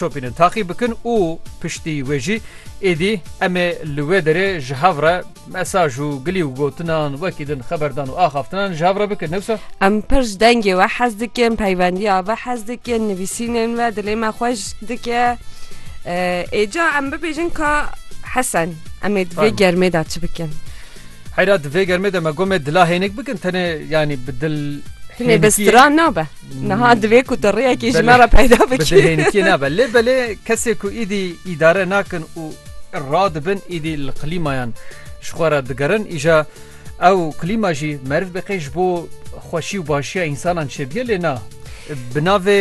Şopînin taqî bikin û piştî wê jî êdî em ê li wê derê ji hev re mesaj û gilî û gotinan wekî din xeberdan û axaftinan ji hev re bikin ne wisa? Em pir ji dengê we hez dikin, peyvendiya ve hez dikin, nivîsînên ve dilê me xweş dike. Êca em bibêjin ka Hesen em ê di vê Fahim. germê de çi bikin? Heyra di vê germê de me got me dila hênik bikin tenê yanî bi dil Hînê bi stran nabe. Niha divê ku tu rêyekê ji me re peyda bikî. Bi dil hênikiyê nabe. Lê belê kesê ku îdî îdare nakin û radibin îdî li klîmayan ji xwe re digerin îja ew klîma jî meriv biqê ji bo xweşî û başiya însanan çêbîye lê na bi navê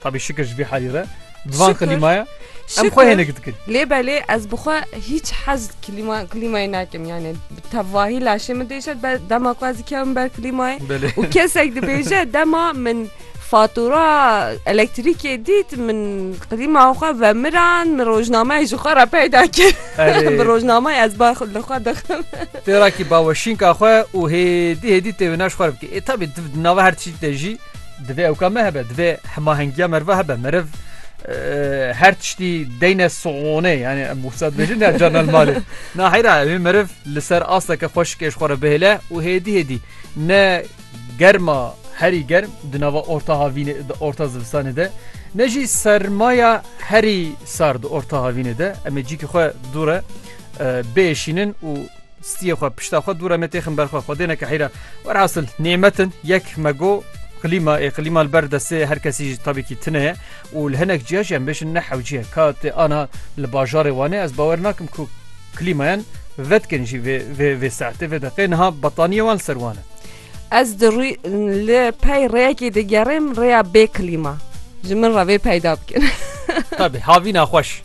Tabî şikir ji vî halî re di van klîmaya em xwe hênik dikin. Lê belê ez bi xwe hîç hez klîma klîmayê nakim yani bi tevahî laşê min dêşet be dema ku ez dikevim ber klîmayê Belê. û kesek dibêje dema min fatura elektrîkê dît min klîma xwe vemiran min rojnameyê ji xwe re peyda kir Erê. bi rojnameyê ez ba li xwe dixim Têrakî baweşînka xwe û hêdî hêdî têvinaş xwe bikê. Ê tabî di nava her tiştî te jî Divê ewka me hebe, divê hemahengiya merve hebe. Meriv her tiştî deyne soğonê yani em wisa dibêjin ya canel malê. Na heyra evê meriv li ser asteke xweşikê ji xwe re bihêle û hêdî hêdî ne germa herî germ di nava orta havînê di orta zivistanê de ne jî sermaya herî sar di orta havînê de em ê cîkî xwe dû re bêşînin û Stiyê xwe pişta xwe dûre me têxin ber xwe xwedê neke heyra werhasil nêmetin yek me go klîma ê klîma li ber destê her kesî ji tabîkî tine ye û li hinek ciya jî em bêjin ne hewciye ka tê ana li bajarê wanê ez bawer nakim ku klîmayan vedkin jî vê vê vê saetê vê deqê niha bataniyê wan li ser wan e Ez di rû li pey rêyekê digerêm rêya bê klîma ji min re vê peyda bikin. Tabi havîna xweş.